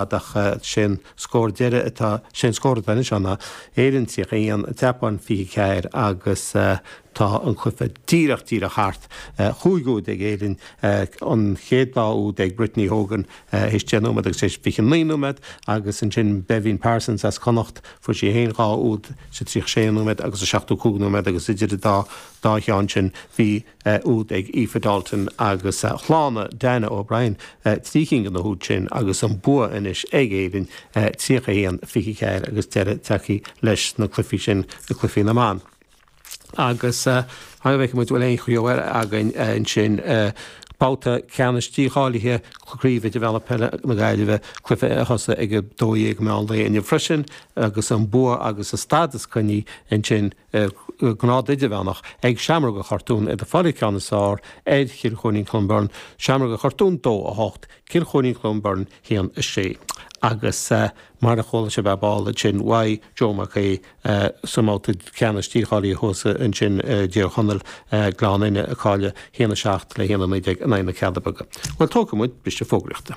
ach sé an scór deiridh atá, sé an scór atá anois ann ná Éirinn 31, Seapáin 24 agus tá an cluiche díreach, díreach thart. Cúig úd ag Éirinn, an chéad dá úd ag Brittany Hogan théis 10 nóiméad agus théis 29 nóiméad agus ansin Béibhinn Parsons as Connacht, fuair sí féin dhá úd sa 36 nóiméad agus sa 75 nóiméad agus idir an dá cheann sin bhí. úd ag Aoife Dalton agus shlánaigh Dannah O'Brien trí cinn de na húid sin, agus an bua anois ag Éirinn, 31, 24, agus deireadh tagtha leis na cluifí sin, na cluifí na mban. Agus fan go bhfeicfidh muid an bhfuil aon cheo eile againn ansin. Babhta ceannais dícháilithe Craoibhe Idirmheánach Peile na Gaillimhe cluife a thosaigh ag 12 meán lae inniu freisin agus an bua agus an stádas coinnithe ansin, sa ngrád idirmheánach, ag Seamróga Chartúin iad ag fáil an ceann is fearr ar Chill Choirín Clonberne, Seamróga Chartúin 2 8, Cill Choirín Clonberne 1 6. Agus mar a chuala sibh ar ball ansin uaidh Joe Mac Aoidh sa mbabhta ceannais dícháilithe thuas ansin i dTír Chonaill, Gleann Fhinne ag cailleadh 1 7 le 1 19 in aghaidh na Cealla Beaga. Bhuel, tógfaidh muid briseadh fógraíochta.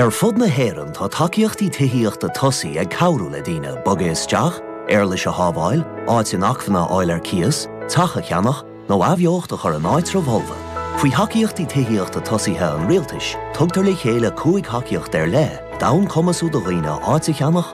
Ar fud na hÉireann tá tacaíochtaí tithíochta tosaigh ag cabhrú le daoine bogadh isteach, éarlais a shábháil, áit inacmhainne a fháil ar cíos, teach a cheannach, nó athbheocht a chur in áitribh fholmha. Faoi Thacaíochtaí Tithíochta Tosaithe an Rialtais, tugtar le chéile cúig thacaíocht ar leith d'fhonn cumasú do dhaoine áit a cheannach,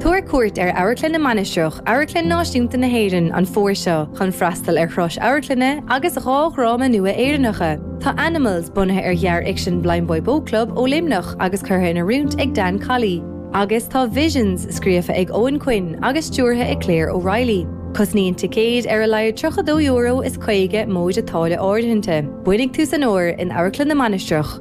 Tabhair cuairt ar Amharclann na Mainistreach, Amharclann Náisiúnta na hÉireann, an fómhar seo chun freastal ar thuras amharclainne agus dhá dhráma nua Éireannacha. Tá Animals bunaithe ar ghearrfhicsean Blindboy Boatclub ó Luimneach agus curtha in oiriúint ag Dan Colley, agus tá Visions scríofa ag Eoghan Quinn agus stiúrtha ag Claire O'Reilly. Cosnaíonn ticéid ar a laghad €32 is 50 móide táille áirithinte. Bainfidh tú san uair in Amharclann na Mainistreach.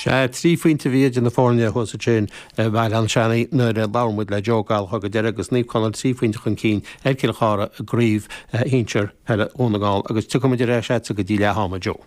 Sea, trí phointe a bhí idir na foirne thuas ansin i mBéal Átha Seanaidh nuair a labhair muid le Joe Gallagher go deireadh agus Naomh Conaill trí phointe chun cinn ar Chill Chartha i gCraobh Shinsir Peile Dhún na nGall agus tiocfaidh muid ar ais agatsa go dtí leath ama, Joe.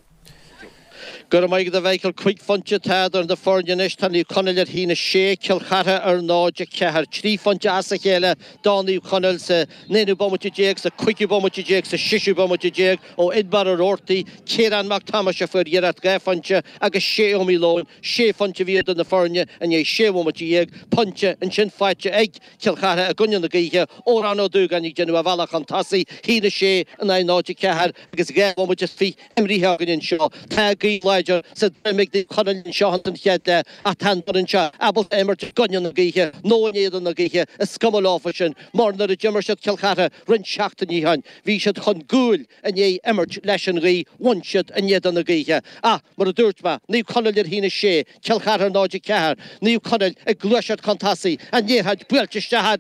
Go raibh maith agat, a Mhíchíl. Cúig phointe atá idir na foirne anois. Tá Naomh Conaill ar 1-6, Cill Chartha ar 0-4. Trí phointe as a chéile do Naomh Conaill san aonú bomaite déag, sa chúigiú bomaite déag, sa seisiú bomaite déag, ó Finnbarr Roarty, Ciarán Mac Tomáis a fuair iarracht dhá phointe agus Shea Malone, sé phointe a bhí idir na foirne i ndiaidh sé bhomaite dhéag, pointe ansin faighte ag Cill Chartha i gcoinne na gaoithe, Odhrán Ó Dúgáin ag déanamh a bhealaigh chun tosaigh, 1-6 in aghaidh 0-4 agus dhá bhomaite is fiche imríthe againn anseo. Tá gaoth láidir sa droim ag Naomh Conaill anseo ins an chéad leath ach tá an fhoireann seo ábalta imirt i gcoinne na gaoithe nó in éadan na gaoithe, is cuma leofa sin mar nuair a d'imir siad Cill Chartha roinnt seachtainí ó shin, Bhí siad chun cúil i ndiaidh imirt leis an ghaoth, bhuaigh siad in éadan na gaoithe. Ach, mar a dúirt mé, Naomh Conaill a haon a sé, Cill Chartha 0, 4, Naomh Conaill ag gluaiseacht chun tosaigh, an liathróid buailte isteach,